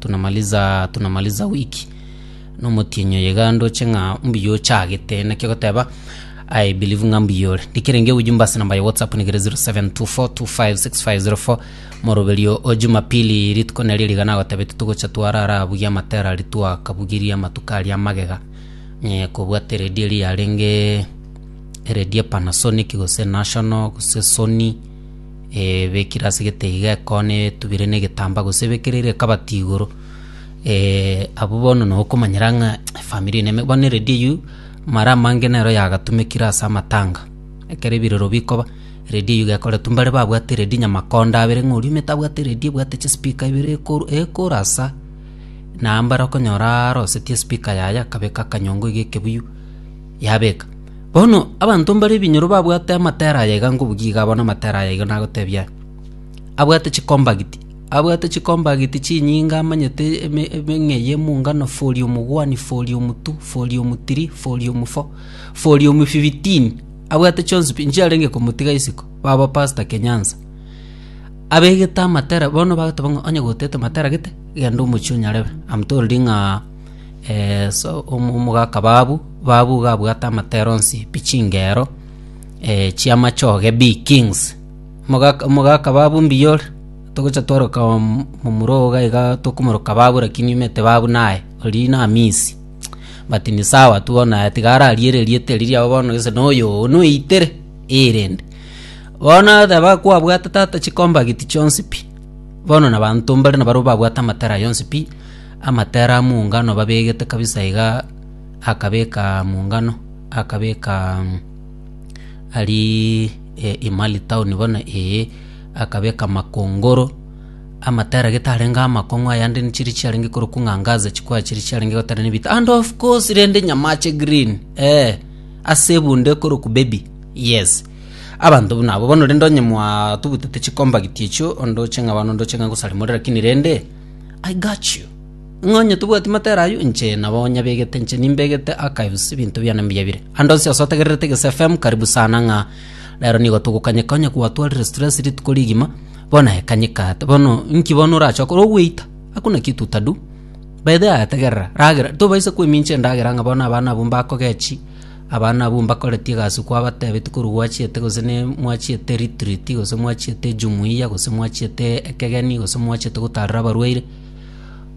Tunamaliza tunamaliza week nomotienyi oye iga ndoche ng'a mbuya ochagete naki ogoteba I believe ng'a mbuya ore ndikerenge ewe jumba ase namba ya whatsapp nigere 0724256504 moroberio o jumapili rituko nario riga nagotebete togocha twarara buya amatera aria twakabugirie amatuko aria amagega eh, kobwata eredi eria yarenge eredi epanasonic gose national gose sony Ebekire ase egetei iga ekoona etubire negetambaa gose ebekereire ekabati igoro, abwo bono nabo okomanyera ng'a efamiri eye neme. Bono eredi eywo mara amange nero yagatumekire ase amatanga, ekero ebirero bikoba eredi eywo iga ekoretwe mbare babwate eredi nyamakonda abere ng'a oria omanyete abwate eredi ebwate chispeaker ibere ekoru ekoru asa, na mbare okonyoraa arosetie espika yaye akabeka akanyongo iga ekebuyu. yabeka. Bono abanto mbare ebinyoro babwate amatera aya iga ngobugia iga abone amatera aya iga nagotebia aya. Abwate chikombagiti, abwate chikombagiti chinyinga amanyete eme emeng'ei emungano fori omogwani, fori omotu, fori omotiri, fori omofo, fori omofibitini, abwate chionsi pi nchiarenge komotiga isiko, baba pasta Kenyansa. Abegete amatera bono bagoteba ng'a onye gotete matera gete, genda omochie onyarebe. Am told ng'a. so omogaka babu babu gabwate amatera onsi pi chingero chi'amachoge bi kings. Mogaka mogaka babu mbiyore togocha tworoka momura ogo iga tokomoroka babu lakini omanyete babu naye oria namisi but ni sawa tu bono aye tiga ararie ererieta eri riabo bono gese noyo oo noitere eh rende. Bono oteba kwabwate tata chikombageti chionsi pi bono nabanto mbare nabarabwo babwate amatera aya onsi pi. Amatera a mungano babegete kabisa iga, akabeka mungano, akabeka arii Imali town bono ee, akabeka makongoro, amatera gete arenge amakong'u ayande nchire chiarenge korokwa ng'a angaza chikwa chire chiarenge gotera nebita and of course rende nyama ache green eeh, ase ebunde ekorokwa baby yes. Abanto buna abwo bono rende onye mwatubutete chikombagiti echio ondoche ng'a abana ondoche ng'a ngosarimore rakini rende. I got you, ng'a onye tobwati matera ayio, inche nabo onyabegete, inche nimbegete archives, ebinto biane mbuya bire. Ande onsi ase otegererete Gese FM, karibu sana ng'a rero nigo togokanyeka onye gwatwarire stress rituko rigima, bono aye kanyeka ate. Bono inki bono orache okore? Ogweita? Hakuna kitu utadu. By the way aye tegerera, ragera, tobaisa kwemincha endagera ng'a bono abana abwo mbakogechi, Abana abwo mbakoretie egasi kwabatebeti korwa gwachiete gose ne mwachiete ritiriti gose mwachiete ejumuia gose mwachiete ekegeni gose mwachiete gotaarera abarwaire,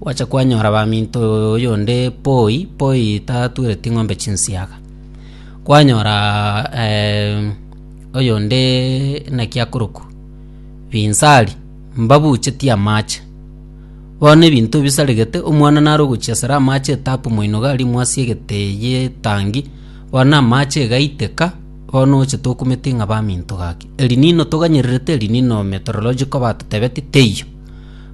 gwacha kwanyora baminto oyonde poi poi tatwereti ng'ombe chinsiaga. Kwanyora oyonde naki akorokwa binsari mbabuchetie amache. Bono ebinto bisaregete, omwana nare ogochia sare amaache etapu moinogo arimwe ase egete y'etangi, bono amaache egaiteka, bono oche tokumeti ng'a baminto gaki. Elinino toganyererete elinino meteorological batotebeti teiyo.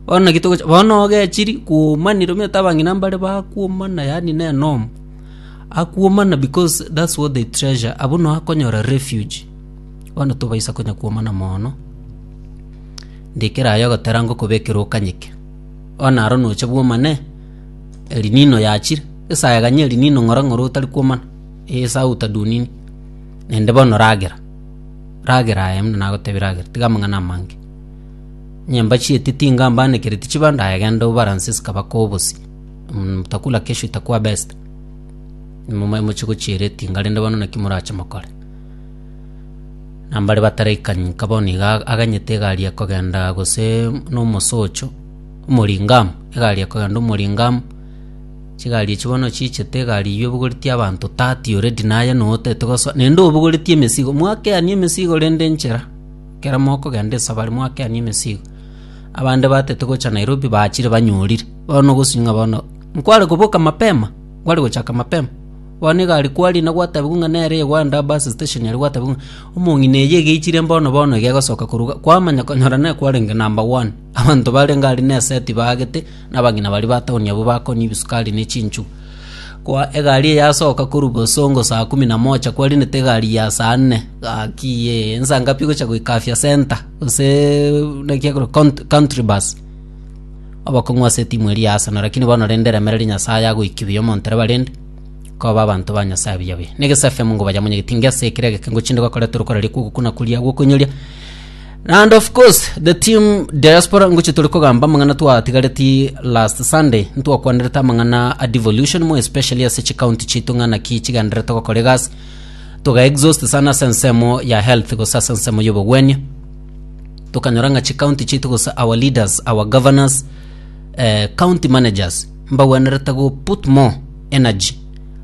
Bono naki togochi bono ogechiri kwoomanire omanyete abang'ina mbare bakwomana yaani na enomo, akwomana because that's what they treasure abwo no akonyora refuge, bono tobaisa konya kwomana moono. ndikera aye ogotera ngokobekera okanyeke. Onye aro nocha bwomane Elinino yachire, esaa eganye Elinino ng'ora ng'ora otari kwomana, ee esaa outa dunini. Naende bono ragera, ragera aye buna nagotebire ragera, tiga amang'ana amange. Nyomba chi'etiti iga mbaanekereti chibando aye genda obaranse zikabake obosi, mtakula kesho itakuwa best. Momoe mochie gochiera etinga rende bono naki morache mokore? Nambare bataraikani nka bono iga aganyete egari ya kogenda gose na omosocho, omoringamu, egari ya kogenda omoringamu, chigari echio bono chichete egari eywo ebogoreti abanto tati already naye noo otagete gosoa naende obogoreti emesigo, mwakeani emesigo rende nchera, ekero mokogenda esabari mwakeani emesigo. Abande batete gocha Nairobi bachire banyorire, bono ogosika ng'a bono, nkware koboka mapema, nkware gochaka mapema. Bono iga aria kwariri na gwatabigwa ng'a nere Yohana aa bus station aria gwatabigwa ng'a omong'ina eye egeichire mbono bono iga egosoka koruga kwamanya konyora nere kwarenge number one. Abanto barenge aria na esegi tibaagete na abang'ina baria ba town abwo bakonywa ebisukari ne chinchugu. Kwa egari eye yasoka korwa bosongo saa kumi na moja kwariinete egari ya saa nne gaki ye nsa ngapi gocha goika afya centre gose naki ekorwa count- country bus. Abakong'u ase etimu eria ya Arsenal lakini bono rende remereria Nyasaye agoiki buya omonto ere barende koba abanto ba Nyasaye buya buya. Ne gese FM ngo bayamonyegeti inga ase ekero egekengo chinde bakoretwe rokoreri kwa ogokuna kuria gwa okoinyoria. And of course the team diaspora ngochi tore kogamba amang'ana twatigareti last Sunday ntwakwanerete amang'ana a devolution more especially ase chikaunti chitu ng'a naki chigendererete gokora egasi toga exhaust sana ase ensemo ya health gose ase ensemo ya obogwenia tokanyora ng'a chicounty chiaito gose our leaders our governors eh, county managers mbagwenerete go put more energy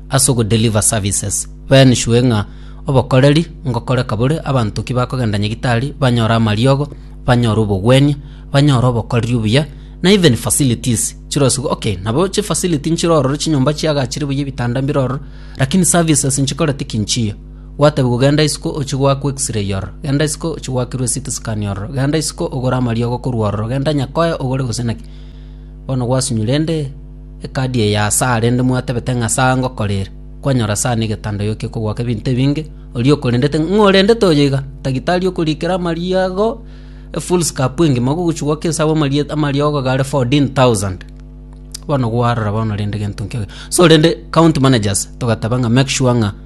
ase ogodeliver services baenishwe ng'a obokoreri ngokoreka bore abanto ki bakogenda nyagitari banyore amariogo banyore obogwenia banyore obokoreri obuya na even facilities chirosigo okay nabo chifacility nchirororo chinyomba chiagachire buya ebitanda mbirororo lakini services nchikorete ki nchiya Gwatebigwa, Genda isiko ochie goakwa X-ray ororo, genda isiko ochie goakirwa eCT scan ororo, genda isiko ogore amariogo korwa ororo, genda nyakoe ogore gose naki. Bono gwasunywa rende ekadi eye aase aa rende mwatebete ng'a ase aa ngokora ere. Kwanyora ase aa negetanda oyokia okogoaka ebinto ebinge, oria okorendete ng'a ng'o orendete oyo iga? Tagitari okorikera amariogo efull scap engima ogogochia goaka ense abwo amarie amariogo iga are fourteen thousand. Bono gwarora bono rende gento nkeiga. So rende county managers togateba ng'a make sure ng'a.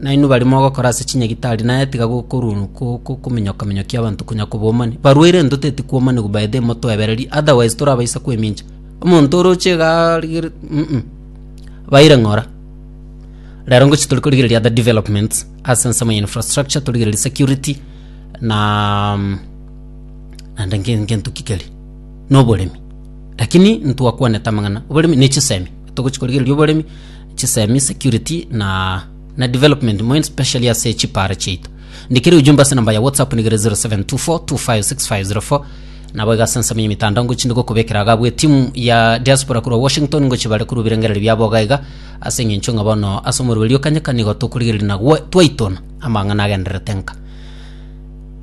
Nainwe baria mogokora ase chinyagitari naye tiga gokoruonwa kokominyoka-minyokia abanto konya kobomani. Barwaire ntoteti kwomanigwa by the motoebererie otherwise torabaisa kwemincha. Omonto oroche iga arigere mm baire ng'ora. Rero ngochi tori korigereria other developments ase ensemo ya infrastructure torigererie security na naende nke nkento ki keria na oboremi. Lakini ntwakwanete amang'ana oboremi ne chisemi togochi korigereria oboremi. chisemi, security na na development moin specially ase chiparo chiaito ndikire ujumbe ase namba ya whatsapp nigere 0724256504 nabo iga ase ensemo y'emitandao ngochi ndikokobekera iga abwo timu ya diaspora korwa washington ngochi bare korwa ebirengereri biabo iga iga ase eng'encho ng'a bono ase omorero oria okanyeka nigo tokorigereria na gwa- twaitona amang'ana agendererete nka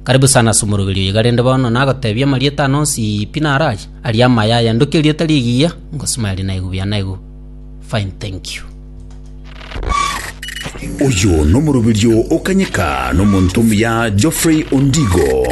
karibu sana ase omoroberio oyo iga rende bono nagotebia amarieta ano onsi pi narache aria amaya aya ndoki erio etari egiya ngosima eria naigu buya naigu Fine thank you. Oyo nomoroberio o kanyeka nomonto omuya Geoffrey Ondigo.